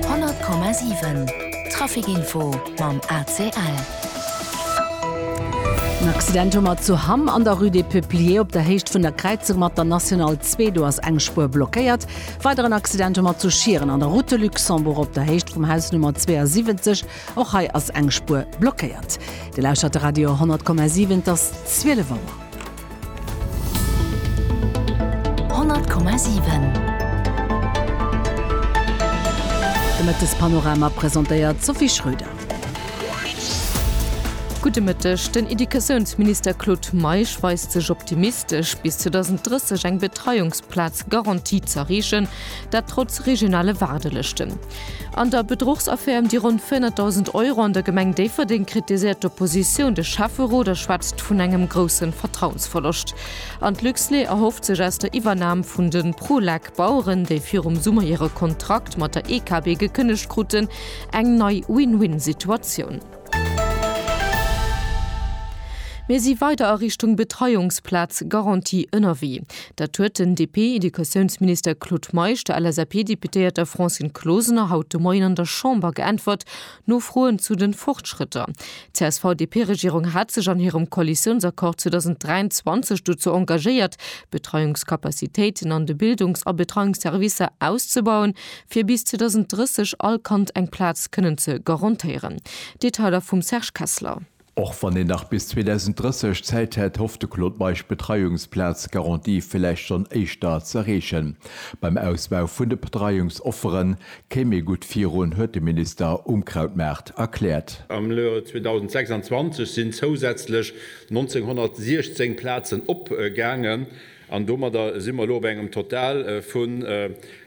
100,7 Traficinfo mam ACL. En Accident hu mer zu Hamm an der Rue des Peupliers op der Héicht vun der Kräizung mat der National 2. Do ass eng Spuer blockéiert. Weideren Accident hu mer zu Schieren an der Route de Luxembourg op der Héicht vum Haus Nummer 72. Och hei ass eng Spuer blockéiert. Dir lauschtert de Radio 100,7, et ass 12 Auer. 100,7 De Mëttespanorama presentéiert d'Sophie Schröder. Gudde Mëtteg, Den Educatiounsminister Claude Meisch weist sech optimistesch, bis 2030 eng Betreiungsplaz-Garantie z'erreechen, dat trotz regionale Waardelëschten. An der Bedruchsaffär ëm déi ronn 400.000 Euro an der Gemeng Déifferdeng kritiséiert d'Oppositioun de Schäfferot a schwätzt vun engem grousse Vertrauensverloscht. An d'Luxlait erhofft sech aus der Iwwernam vun de Prolek Baueren, déi virum Summer hire Kontrakt mat der EKB gekënnegt kruten, eng nei Win-Win-Situatioun. Mir si weider a Richtung Betreiungsplaz-Garantie ënnerwee. Dat huet den DP-Educatiounsminister Claude Meisch der LSAP-Deputéierter Francine Closener haut de Moien an der Chamber geäntwert, no Froen zu de Fortschrëtter. D'CSV-DP-Regierung hat sech an hirem Koalitiounsaccord 2023 dozou engagéiert, d'Betreiungscapacitéiten an de Bildungs a Betreiungsservicer auszebauen. fir bis 2030 all Kand eng Plaz kënnen ze garantéieren. Detailer vum Serge Kessler. Och wann een nach bis 2030 Zäit hätt, hofft de Claude Meisch d'Betreiungsplaz-Garantie villäicht schonn éischter ze erreechen. Beim Ausbau vun de Betreiungsoffere kéim ee gutt virun, huet de Minister um Krautmaart erkläert. Am Joer 2026 sinn zousätzlech 1.916 Plazen opgaangen an domadder si mer elo op engem Total vun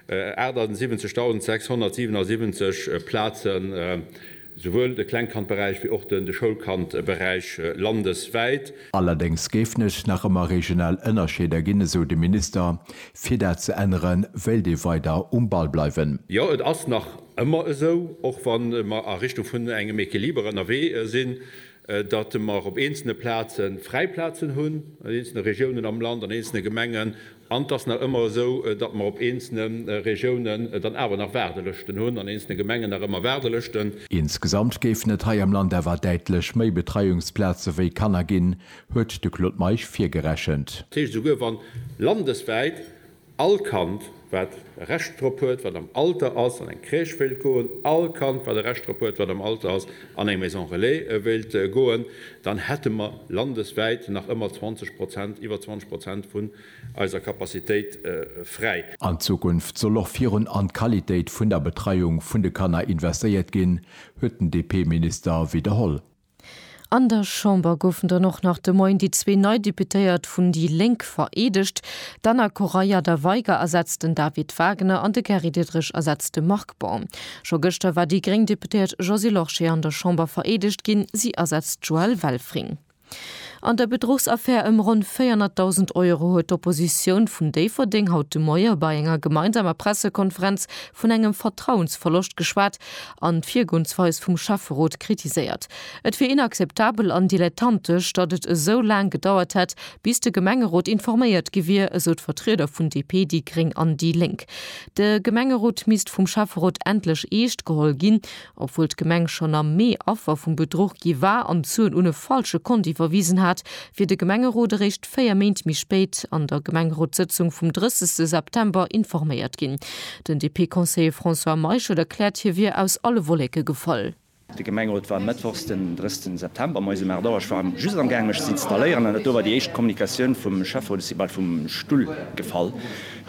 78.677 Plazen, souwuel de Klengkandberäich wéi och de Schoulkandberäich landeswäit. Allerdéngs géifen et nach ëmmer regional Ënnerscheeder ginn, esou de Minister. Fir dat ze änneren, wéilt ee weider um Ball bleiwen. Jo, et ass nach ëmmer esou, och wa mer a Richtung vun engem Equiliber ënnerwee sinn, datt mer op eenzelne Plaze fräi Plazen hunn, an eenzelne Regiounen am Land, an eenzelne Gemengen, an et ass nach ëmmer esou, datt mer op eenzelne Regiounen dann awer nach Waardelëschten hunn, an eenzelne Gemengen nach ëmmer Waardelëschten. Insgesamt géifen et hei am Land awer däitlech méi Betreiungsplaze wéi Kanner ginn, huet de Claude Meisch virgerechent. Dat heescht, esouguer wann landeswäit All Kand, wat e Recht drop huet, wat am Alter ass, an eng Crèche wéilt goen, all Kand, wat e Recht drop huet, wat am Alter ass, an eng Maison Relais wéilt goen, dann hätte mer landeswäit nach ëmmer 20 Prozent, iwwer 20 Prozent vun eiser Capacitéit fräi. An Zukunft soll och virun an d'Qualitéit vun der Betreiung vun de Kanner investéiert ginn, huet den DP-Minister widderholl. An der Chamber goufen dann och nach de Moien déi zwee nei Deputéiert vun déi Lénk vereedegt. D'Anna Correia da Veiga ersetzt den David Wagner an de Gary Diderich ersetzt de Marc Baum. Scho gëschter war déi gréng Deputéiert Josy Lorsché an der Chamber vereedegt ginn, si ersetzt d'Joëlle Welfring. An der Bedruchsaffär ëm ronn 400.000 Euro huet d'Oppositioun vun Déifferdeng haut de Moie bei enger gemeinsamer Pressekonferenz vun engem Vertrauensverloscht geschwat an d'Virgoensweis vum Schäfferot kritiséiert. Et wier inakzeptabel an dilettantesch, datt et esou laang gedauert hätt, bis de Gemengerot informéiert gi wier, esou d'Vertrieder vun DP, déi gréng an déi lénk. De Gemengerot misst vum Schäfferot endlech eescht geholl ginn, obwuel d'Gemeng schonn am Mee Affer vum Bedruch gi war an d'Suen un e falsche Kont iwwerwisen hat, wier de Gemengerot eréischt, véier Méint méi spéit an der Gemengerotssëtzung vum 30 September informéiert ginn. Den DP-Conseiller François Meischel erkläert, hie wier aus alle Wolleke gefall. De Gemengerot war mëttwochs den 30 September moies um 8 Auer. Ech war just am gaangen mech ze installéieren an et do war déi éischt Kommunikatioun vum Schäfferot. Ech si bal vum Stull gefall.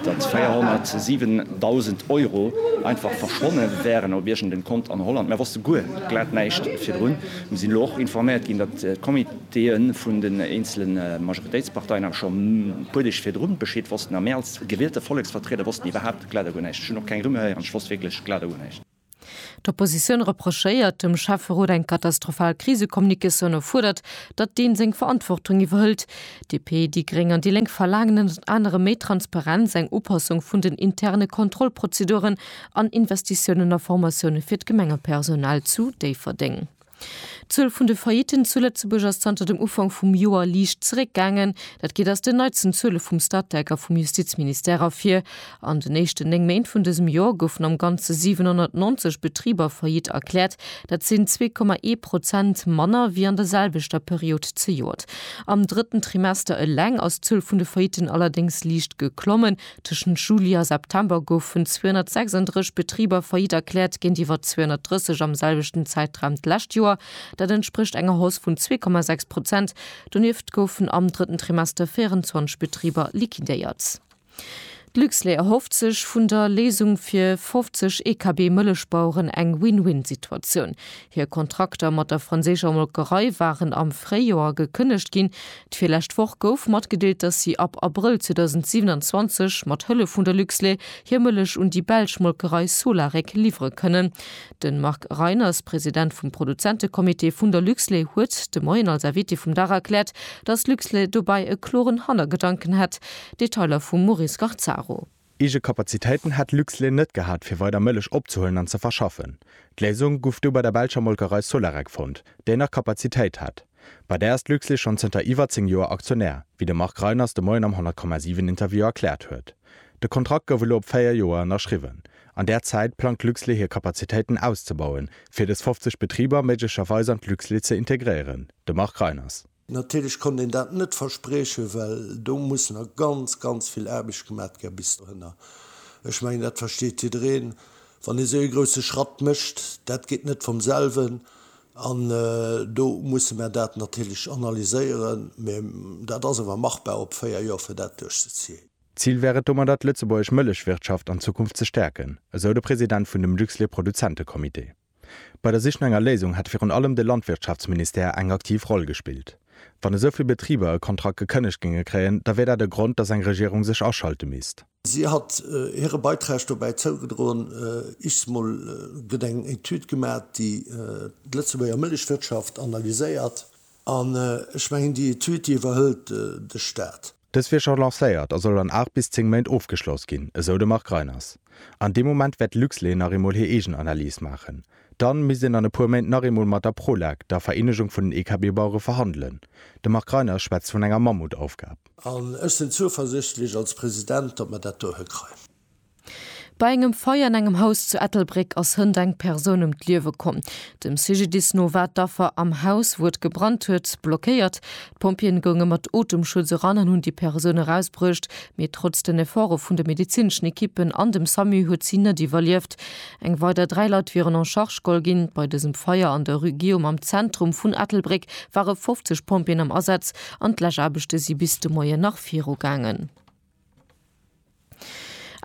datt 407.000 Euro einfach verschwonne wären op iergendem Kont an Holland. Mer wosste guer, glat näischt virdrun. Mir sinn elo och informéiert ginn, datt d'Comitéë vun den eenzele Majoritéitsparteien awer scho e puer Deeg virdru Bescheed wossten a mir als gewielte Volleksvertrieder wossten iwwerhaupt glat a guer näischt. Ech hunn och keng Rumeur héieren, ech wosst wierklech glat a guer näischt. D'Oppositioun reprochéiert dem Schäfferot eng katastrophal Krisekommunikatioun a fuerdert, datt deen seng Verantwortung iwwerhëlt. DP, déi gréng an déi lénk verlaangen ënnert anerem méi Transparenz, eng Upassung vun den interne Kontrollprozeduren an Investitiounen a Formatioune fir d'Gemengepersonal zu Déifferdeng. D'Zuel vun de Faillitten zu Lëtzebuerg ass zanter dem Ufank vum Joer liicht zeréckgaangen. Dat geet aus den neitsten Zuele vum Statec a vum Justizministère ervir. An den éischten néng Méint vun dësem Joer goufen am Ganze 790 Betriber faillite erkläert. Dat sinn zwee Komma ee Prozent manner wéi an der selwechter Period zejoert. Am drëtten Trimester eleng ass d'Zuel vun de Faillitten allerdéngs liicht geklommen, Tëschent Juli a September goufen 236 Betriber faillite erkläert, géintiwwer 230 am selwechten Zäitraum d'lescht Joer. Dat entsprécht enger Hausse vun 2,6 Prozent. Donieft goufen am drëtten Trimester 24 Betriber liquidéiert. D'Luxlait erhofft sech vun der Léisung fir 50 Ekb-Mëllechbaueren eng Win-Win-Situatioun. Hir Kontrakter mat der franséischer Molkerei waren am Fréijoer gekënnegt ginn. D'virlescht Woch gouf matgedeelt, datt si ab Abrëll 2027 mat Hëllef vun der Luxlait hir Mëllech un déi belsch Molkerei Solarec liwwere kënnen. De Marc Reiners, President vum Produzentecomité vun der Luxlait, huet de Moien als Invité vum Dag erkläert, datt Luxlait dobäi e kloren Hannergedanken hätt. Detailer vum Maurice Garzaro. Eege Kapazitéiten hätt Luxlait net gehat fir weider Mëllech opzehuelen an ze verschaffen. D'Léisung guff du bei der belscher Molkerei Solarec fonnt, déi nach Kapazitéit hätt. Bei där ass Luxlait schonn zënter iwwer 10 Joer Aktionär, wéi de Marc Reiners de Moien am 100,7 Interview erkläert huet. De Kontrakt gouf elo op 4 Joer ënnerschriwwen. An där Zäit plangt Luxlait hir Kapazitéiten auszebauen, fir dës 50 Betriber méiglecherweis an d'Luxlait ze integréieren, de Marc Reiners. Natierlech konnt een dat net verspriechen, well do muss nach ganz, ganz vill Aarbecht gemat gär bis dohinner. Ech mengen, dat versteet jiddereen, wann ee sou ee grousse Schratt mécht, dat geet net vom selwen. An do musse mer dat natierlech analyséieren, mä dat ass awer machbar op véier Joer, fir dat duerchzezéien. D'Zil wär et domadder, d'lëtzebuergesch Mëllechwirtschaft an Zukunft ze stäerken, esou de President vun dem Luxlait-Produzente-Comité. Bei der Sich no enger Léisung hätt virun allem de Landwirtschaftsministère eng aktiv Roll gespillt. Wann esou vill Betriber e Kontrakt gekënnegt géinge kréien, da wier dat e Grond, datt eng Regierung sech aschalte misst. Si hat hire Beitrag dobäi zougedroen, Ichs mol gëtt eng Etüd gemat, déi d'Lëtzebuerger Mëllechwirtschaft analyséiert. An ech mengen, déi Etüd, déi iwwerhëlt de Staat. Dës wier scho lancéiert a soll an 8 bis 10 Méint ofgeschloss ginn, esou de Marc Reiners. An deem Moment wäert Luxlé nach eemol hir eegen Analys maachen. Dann misst een an e puer Méint nach eemol mat der Prolag, der Vereenegung vun den EKB-Bauere verhandelen. De Marc Reiners schwätzt vun enger Mammutaufgab. An ech sinn zueversichtlech als President, datt mer dat do hëkreien. Bei engem Feier an engem Haus zu Ettelbréck ass hënt eng Persoun ëm d'Liewe komm. Dem CGDIS no war d'Affer am Haus, wou et gebrannt huet, blockéiert. D'Pompjeeën gounge mat Otemschutz eran an hunn déi Persoun erausbruecht, mee trotz den Efforte vun de medezineschen Ekippen an dem Samu huet si net iwwerlieft. Eng weider dräi Leit wieren en charge geholl ginn. Bei dësem Feier an der Rue Guillaume am Zentrum vun Ettelbréck ware 50 Pompjeeën am Asaz an d'Läschaarbechte si bis de Moien nach virugaangen.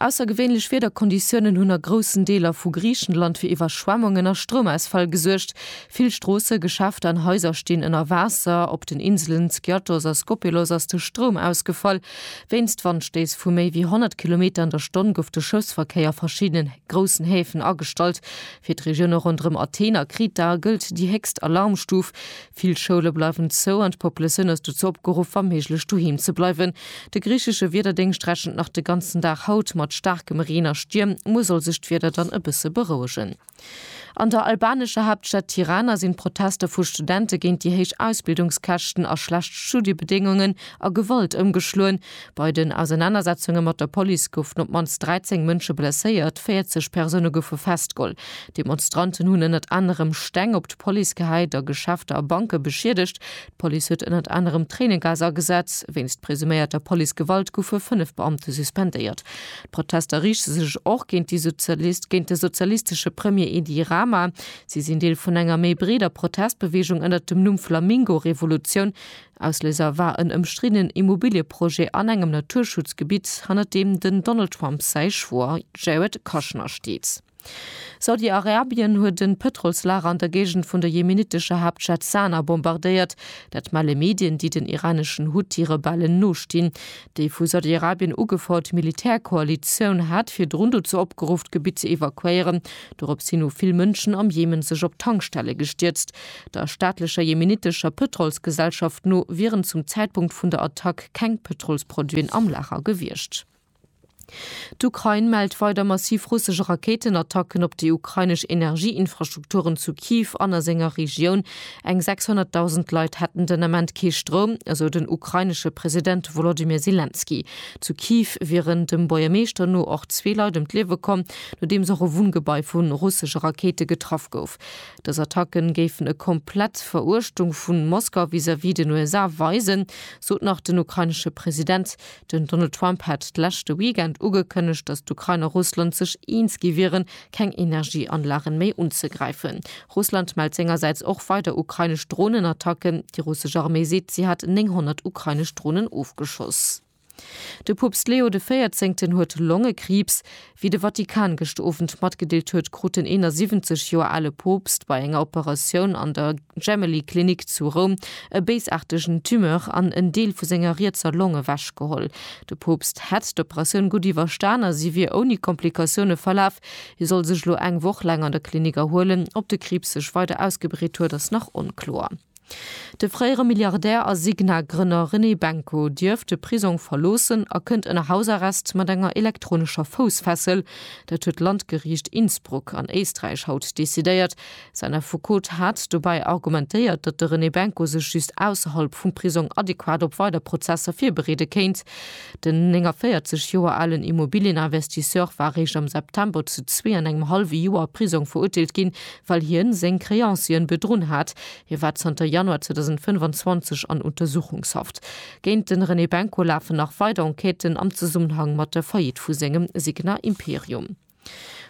Aussergewéinlech Wiederkonditiounen hunn a groussen Deeler vu Griichenland fir Iwwerschwemmungen a Stroumausfäll gesuergt. Vill Stroossen, Geschäfter an Haiser stinn ënner Waasser. Op den Inselen Skiathos a Skopelos ass de Stroum ausgefall. Wéinst Wandstéiss vu méi wéi 100 Kilometer an der Stonn gouf de Schëffsverkéier a verschiddene groussen Häfen agestallt. Fir d'Regioune ronderëm Athen a Kreta gëllt déi héchst Alarmstuf. Vill Schoule bleiwen zou an d'Populatioun ass dozou opgeruff, wa méiglech doheem ze bleiwen. De griichesche Wiederdéngscht rechent nach de ganzen Dag haut mat staarkem Reen a Stierm. Muer soll sech d'Wieder dann e bësse berouegen. An der albanescher Haaptstad Tirana sinn d'Protester vu Studente géint déi héich Ausbildungskäschten a schlecht Studiebedéngungen a Gewalt ëmgeschloen. Bei den Ausernanersetzunge mat der Police goufen op d'mannst 13 Mënsche blesséiert, 40 Persoune goufe festgeholl. D'Demonstranten hunn ënnert anerem Steng op d'Police gehäit a Geschäfter a Banke beschiedegt. D'Police huet ënnert anerem Tréinegas agesat. Wéinst presuméierter Police-Gewalt goufe fënnef Beamte suspendéiert. D'Protester riichte sech och géint déi Sozialist géint de sozialistesche Premier Edi Rama. Si sinn Deel vun enger méi breeder Protestbeweegung ënnert dem Numm Flamingo-Revolutioun. Ausléiser war en ëmstriddenen Immobilieprojet an engem Naturschutzgebitt, hannert deem den Donald Trump säi Schwoer Jared Kushner steet. Saudi-Arabien huet e Pëtrolslager an der Géigend vun der jemenitescher Haaptstad Sana bombardéiert. Dat melle Medien, déi den iraneschen Huthi-Rebellen nostinn. Déi vu Saudi-Arabien ugefouert Militärkoalitioun hat virdrun dozou opgeruff, d'Gebitt ze evakuéieren, Dorops hin hu vill Mënschen am Jemen sech op d'Tankstelle gestierzt. Der staatlecher jemenitescher Pëtrolsgesellschaft no wieren zum Zäitpunkt vun der Attack keng Pëtrolsproduiten am Lager gewiescht. D'Ukrain mellt weider massiv russesch Rakéitenattacken op déi ukrainesch Energieinfrastrukturen zu Kyiv an a senger Regioun. Eng 600.000 Leit hätten den Ament kee Stroum, esou den ukrainesche President Wolodymyr Selenskyj. Zu Kyiv wieren dem Buergermeeschter no och zwee Leit ëm d'Liewe komm, nodeems och e Wunngebai vu russesche Rakéite getraff gouf. Dës Attacke géifen e komplett Veruechtung vu Moskau vis-à-vis den USA weisen, sot nach den ukrainesche President. Den Donald Trump hat d'leschte Weekend ugekënnegt, datt d'Ukrain a Russland sech eens gi wieren, keng Energieanlagen méi unzegräifen. Russland mellt sengersäits och weider ukrainesch Dronenattacken. Déi russesch Arméi seet, si hat 900 ukrainesch Dronen ofgeschoss. De Poopst Leo de Véierzéngten huet Longekriibs. Wéi de Vatikan gëscht Owend matgedeelt huet, krut den 71 Joer ale Poopst bei enger Operatioun an der Gemelli Klinik zu Roum e béisaartegen Tumeur an en Deel vu senger rietser Long ewech geholl. De Poopst hätt d'Operatioun gutt iwwerstan a si wier ouni Komplikatioune verlaf. Hie soll sech elo eng Woch laang an der Klinik erhuelen. Ob de Kriibs sech weider ausgebreet huet, ass nach onkloer. De fréiere Milliardär a Signa-Grënner René Benko dierf de Prisong verloossen a kënnt ënner Hausarrest mat enger elektronescher Foussfessel. Dat huet d'Landgeriicht Innsbruck an Éisträich haut decidéiert. Säin Affekot hat dobäi argumentéiert, datt de René Benko sech just ausserhalb vum Prisong adequat op weider Prozesser virbereede kéint. Den 49 Joer alen Immobilieninvestisseur war réischt am September zu zwee an engem hallwe Joer Prisong verurteelt ginn, well hien seng Créanciën bedrunn hat. Hie war zanter Januar 2025 an Untersuchungshaft. Géint de René Benko lafen nach weider Enquêten am Zesummenhang mat der Faillite vu sengem Signa Imperium.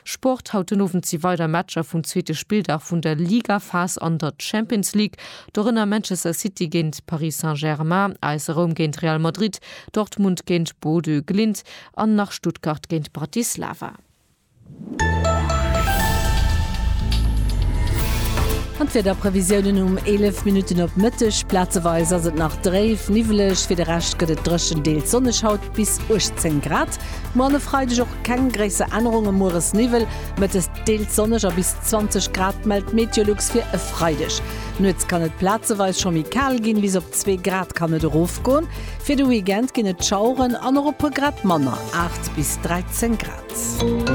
Sport, Haut den Owend si weider Matcher vum zweete Spilldag vun der Ligaphas an der Champions League. Dorënner Manchester City géint Paris Saint-Germain, AS Roum géint Real Madrid, Dortmund géint Bodø Glimt an nach Stuttgart géint Bratislava. An d'Wiederprevisiounen um 11 Minutten op Mëtteg, Plazeweis ass et nach dréif, niwweleg, fir de Rescht gëtt et dréchen, deels sonneg, haut bis 18 Grad. Moarn e Freideg och keng gréisser Ännerungen, mueres Niwwel, mëttes deels sonneg a bis 20 Grad mellt d'Meteolux fir e Freideg. Nuets kann et plazeweis scho méi kal ginn, bis op 2 Grad kann et erofgoen. Fir de Weekend ginn et Schaueren an och e puer Grad manner, 8 bis 13 Grad.